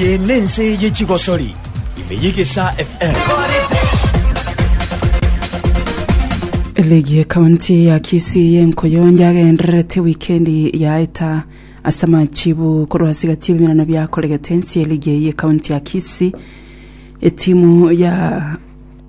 Eye nense ye chigosori ime yegesa FM. Ligi ya kaunti ya Kisii y'enkoyo yagendererete wikendi yaeta ase amachibu korwa ase egati y'ebimerano biakoregete ense ya ligi eye ya kaunti ya Kisii etimu ya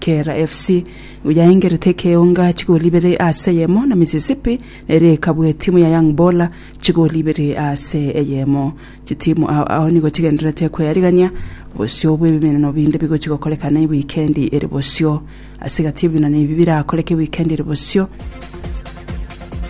Kera FC nigo yaengerete ekeonga chigoli ibere ase eyemo na Mississippi nere ekabua etimu ya Young Bola chigoli ibere ase eyemo. Chitimu ao ao nigo chigendererete kweyarigania bosio bw'ebiminano binde bigochi gokorekana ewikendi ere bosio. Ase egati y'ebiminano ebi birakoreke ewikendi ere bosio,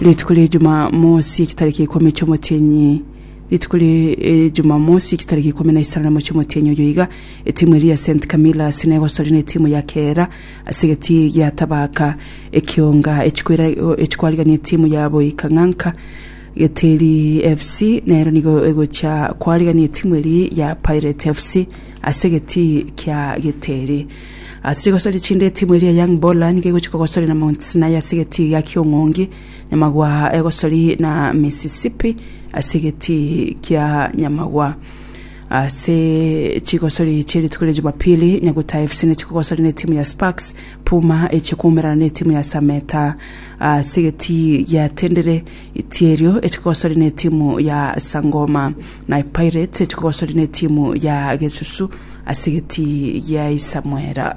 rituko ria Jumamosi ekitariki ikomi chi'omotienyi Rituko ri'Ejumamosi chitariki ikomi na isano na mochie omotienyi oyo iga, etimu eria ya St Camillas negosorire netimu ya Kehera ase egeti gia Tabaka ekionga echikwariganire etimu ya Boikang'anka. Geteri FC nero nigo egochia kwarigania etimu eria ya Pirate FC ase egeti kia Geteri. Ase chigosori chinde etimu eria ya Young Bola nigo egochia kogosorera na Mount Sinai ase egeti gia Kiong'ongi. Nyamagwa egosori na Mississippi ase egetii kia Nyamagwa. Ase chigosori chia rituko ria Jumapili, Nyaguta FC nigo chikogosana na etimu ya Sparks, Puma echie koumerana na etimu ya Sameta. Ase egetii gia Tendere, Itierio echie kogosana na etimu ya Sangoma, naye Pirates echie kogosana na etimu ya Gesusu ase egetii gia Isamwera.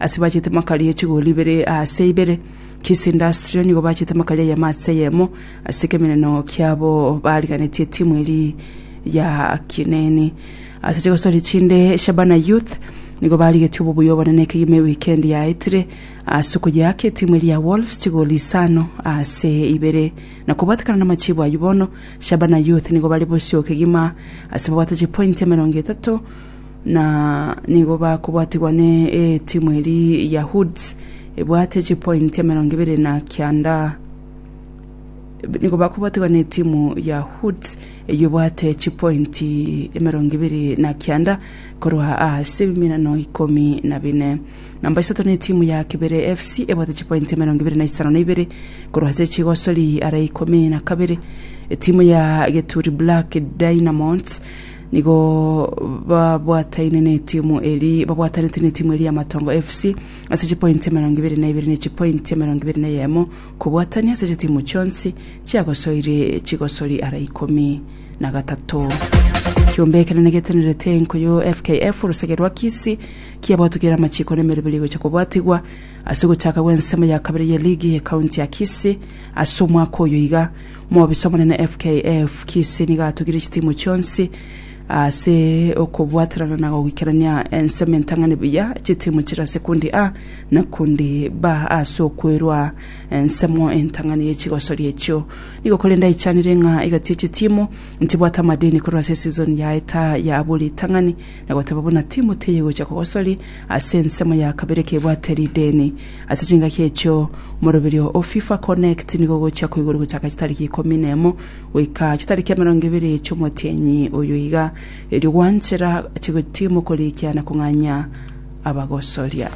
Ase bachete makari e chigori ibere aase ibere, Kiss Industry nigo bachete makari ayemo aase eyemo ase ekemeneno kiabo bariganetie etimu eri ya Kineeni. Ase chigosori chinde, Shabana Youth nigo barigetie obobuya obonene ekegima ewikendi yaetire ase okoyeaka etimu eri ya Wolves chigori isano aase ibere. Na kobwatekana namachibo ayio bono, Shabana Youth nigo bare bosio kegima ase babwate chipointi emerongo etato na nigo bakobwatigwa ne etimu eri ya Hoods ebwate chipointi emerongo ebere na kianda nigo bakobwatigwa ne etimu ya Hoods eyio ebwate chipointi emerongo ebere na kianda korwa ase ebiminano ikomi na bine. Namba isato ne etimu ya Kibere FC ebwate chipointi emerongo ebere na isano na ibere korwa ase chigosori are ikomi na kabere. Etimu ya Geturi Black Dynamos Nigo babwataine netimu eri babwatanete netimu eri ya Matongo FC ase chipointi emerongo ibere na ibere ne chipointi emerongo ibere na eyemo kobwatania ase chitimu chionsi chiagosoire chigosori ara ikomi na gatato. Kiombe ekenene getenerete enko yo FKF orosege rwa Kisii kiabwatokire ere amachiko na emeroberi egocha kobwatigwa ase ogochaka gw'ensemo ya kabere ye ligi ye county ya Kisii ase omwaka oyo iga Mobiso omonene FKF Kisii nigo atugire chitimu chionsi ase okobwaterana na goikerania ensemo entang'ani buya chitimu chire ase kundi A na kundi B ase okwerwa ensemo entang'ani ye chigosori echio. Nigo korende aichanire ng'a igatie chitimu ntibwate amadeni korwa ase esizoni yaeta ya abwo ritang'ani na goteba buna timu teigocha kogosori ase ensemo ya kabere kebwate rideni. Ase chingaki echio, omoroberio o FIFA Connect nigo ogochia koigorwa gochaka chitariki ikomi na emo goika chitariki emerongo ebere chi'omotienyi oyo iga, erio gwanchera ache gotiima okorikia na kong'anyia abagosoria.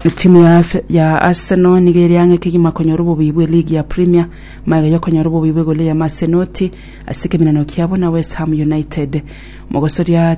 Etimu ya, ya Arsenal nigo ere ang'e kegima konyora obobii bwe ligi ya Premier, magega yokonyora obobii bw'egoli eye Masenoti ase ekeminano kiabo na West Ham United. Mogosoria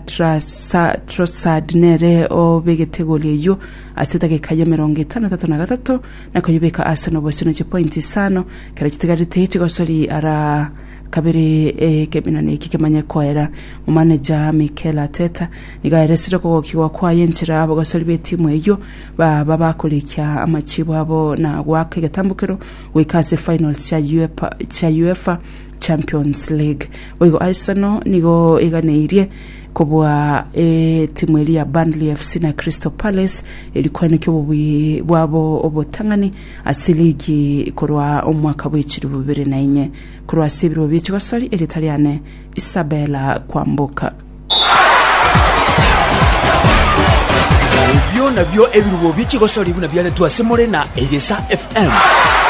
Trossard nere obegete egoli eyio ase edageka ya emerongo etano na tatato na gatato na koyebeka ase nobosie na chipointi isano ekero chitigarete chigosori ara kabere ekeminani eki kemanye koera. Momaneja Mikel Arteta nigo aeresire okogokigwa kwaye enchera abagosori b'etimu eyio baba bakorekia amachibo abo na goaka egetambukero goika ase finals chia Uefa Champions League. Boigo Arsenal nigo eganeirie kobua etimu eri ya Burnley FC na Crystal Palace eri koeneki obobui bwabo obotang'ani ase ligi korwa omwaka bw'echiribu bibere na inye korwa ase ebirobo bi'echigosori erita riane Isabella Kwamboka. Ebio nabio ebirubo bi'echigosori buna biaretwe ase more na Egesa FM.